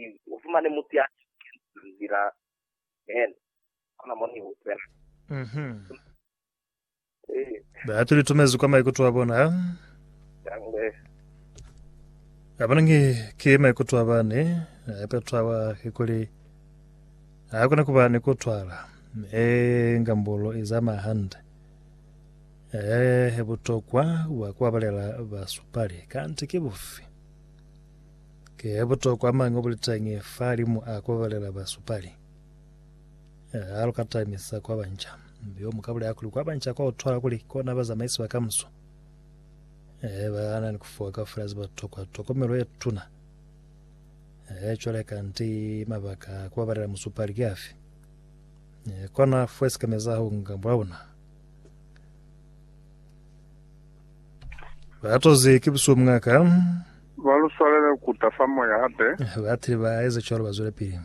Ili u fumane mutu ya shikilizwe nzila yene, kona mo ni utwela. Mhm. Ee, Batu li tumezi kwa maikuto a bona. yangle. A bona ngi ki maikuto a bani. A petwa wa kikuli. A kona kuba ni kutwala. E ngambulo i zama hande. E butokwa wa kubabalela basupali. Kanti ki bufi? Ki butokwa mañi obuliteñi fahalimu a kubabalela basupali? A haluka tamisa kwa banca, mi yo muka bulela kuli kwa banca kwa utwahala kuli ki kona bazamaisi ba kamuso. Ee, bana ni kufuwa kaufela ze batokwa tokomelo ye tuna. Ee, cwale kanti mabaka a kubabalela musupali ki afi? Ee, kona fuwe sikamezaho nga mulauna. Ba toze ki busubu mngaka. Ba lu swalele ku ta fa moya hape. Ba tile ba eza cwalo ba zwela pili.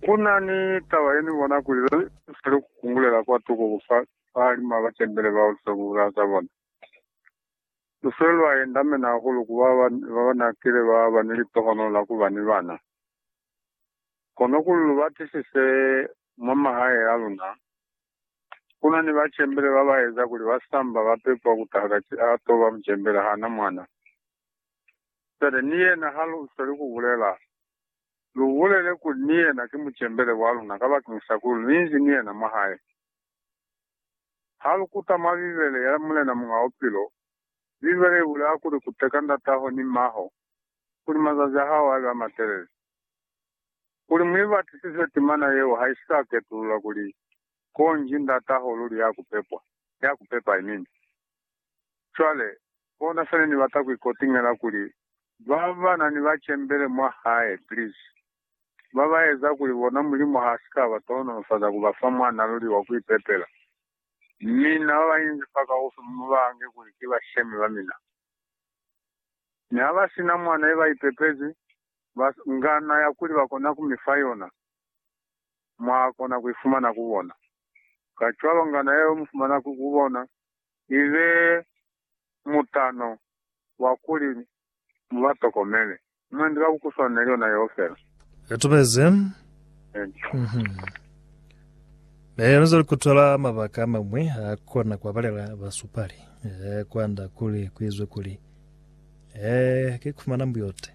Ku na ni taba ye ni bona kuli lu sa lu kungulela kwa tuko ku fa bahalim'a ba tempele bao lu sa kungulela za bona. Lu file lwa yendamena hahulu ku ba ba n'a kile ba ba ni litohono la ku ba ni bana. Kono kuli lu batisise mwa mahae a luna, Kuna ni bacembele babaeza kuli basamba bapepwa kutaha kati atoba mucembele haana mwana. Cwale ni yena halusweli kubulela, lubulele kuli ni yena ki mucembele waluna kabakeñisa kuli luinzi ni yena mwahae. Halukutama Bibele ya Mulena Muñ'a Bupilo, Bibele ibulela kuli kuteka ndataho ni mmaho kuli mazazi ahao abe amatelele. Kuli mu ibatisise timana yeo ha i sa ketulula kuli konji Ndataho luli ya ku pepwa, ya ku pepa, amen. Cwale, kona se ne ni bata ku ikotingela kuli ba ba na ni bacembele mwa Hae, please, ba ba eza kuli bona Mulimu ha si ka ba tohonolofaza ku ba fa mwana luli wa ku ipepela. Mi na ba ba inzi fa kaufi mu ba ange kuli ki bashemi ba mina. Mi ha ba si na mwana ye ba ipepezi, ba nga na ya kuli ba kona ku mi fa yona, mwa kona ku i fumana ku bona. Kacwalo nga na ya yo mu fumana ku bona i be mutano wa kuli mu ba tokomele. Mwendi ka ku kuswana ni yona yeo fela. I tubezi. Mi yena zwale ku tola mabaka a mañwi a kona ku abalela basupali kwand'a kuli ku izwe kuli, Ee, ki ku fumana mbuyote.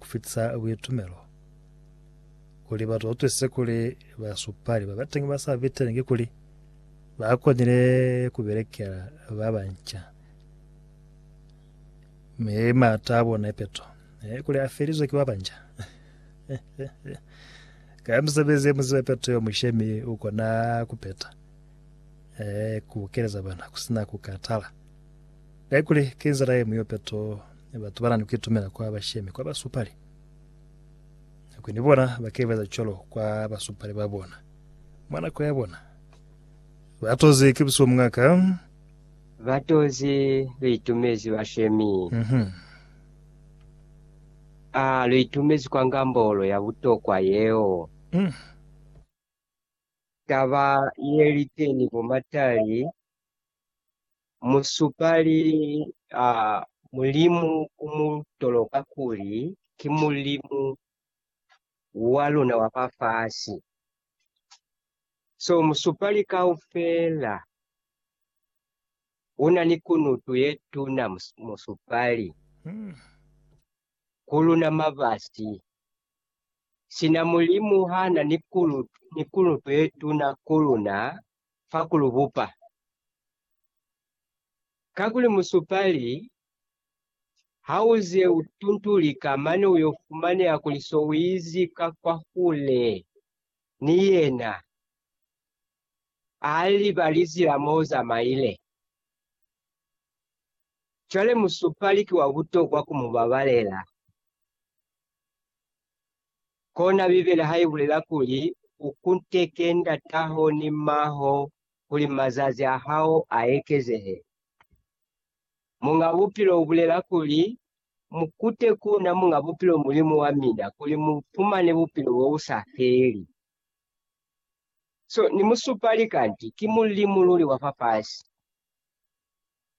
ku fitisa buitumelo kuli batu ba utwisise kuli basupali ba bateñi ba sa fitelengi kuli ba konile ku belekela ba banca me maata a bona ipeto e kuli a felizwe ki ba banja ka misebezi ye muziba ipeto yo mushemi u kona ku peta eh ku keleza bana ku sina ku katala Haikuli ki nzila ye muyope to, batu bana ni kuitumela kwa bashemi, kwa basupali. Haikuli ni bona baka ibeza cwalo kwa basupali ba bona, mwa nako ya bona. Batozi ki busihu mwa ka. Batozi lu itumezi bashemi. A lu itumezi kwa ngambolo ya butokwa yeo? Taba ye liteni bo Matali Musupali a Mulimu u mu toloka kuli ki Mulimu wa luna wa fa fasi. So musupali kaufela u na ni kunutu ye tuna, musupali ku luna mabasi. Sina Mulimu ha na ni kunutu ye tuna ku luna, fa ku lu bupa. Kakuli musupali ha u ze u tuntulika mane u yo fumaneha kuli so u izi ka kwahule ni yena, a liba lizila mo u zamaile. Cwale musupali ki wa butokwa ku mu babalela. Kona Bibele ha i bulela kuli, U kunteke ndataho ni mmaho kuli mazazi a hao a ekezehe. Muñ'a Bupilo u bulela kuli, Mu kute ku na, Muñ'a Bupilo Mulimu wa mina, kuli mu fumane bupilo bo bu sa feli. So, ni musupali kanti ki Mulimu luli wa fafasi.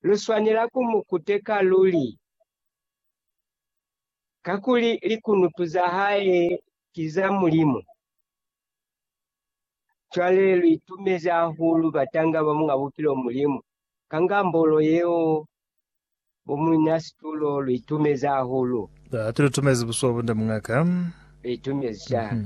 Lu swanela ku mu kuteka luli. Kakuli likunutu za hae ki za Mulimu. Cwale lu itumezi hahulu batanga ba Muñ'a Bupilo Mulimu, ka ngambolo yeo bo muina situlo lu itumezi hahulu. Hati lu tumezi busuwa bunde muñ'a ka. Lu itumezi cwalo.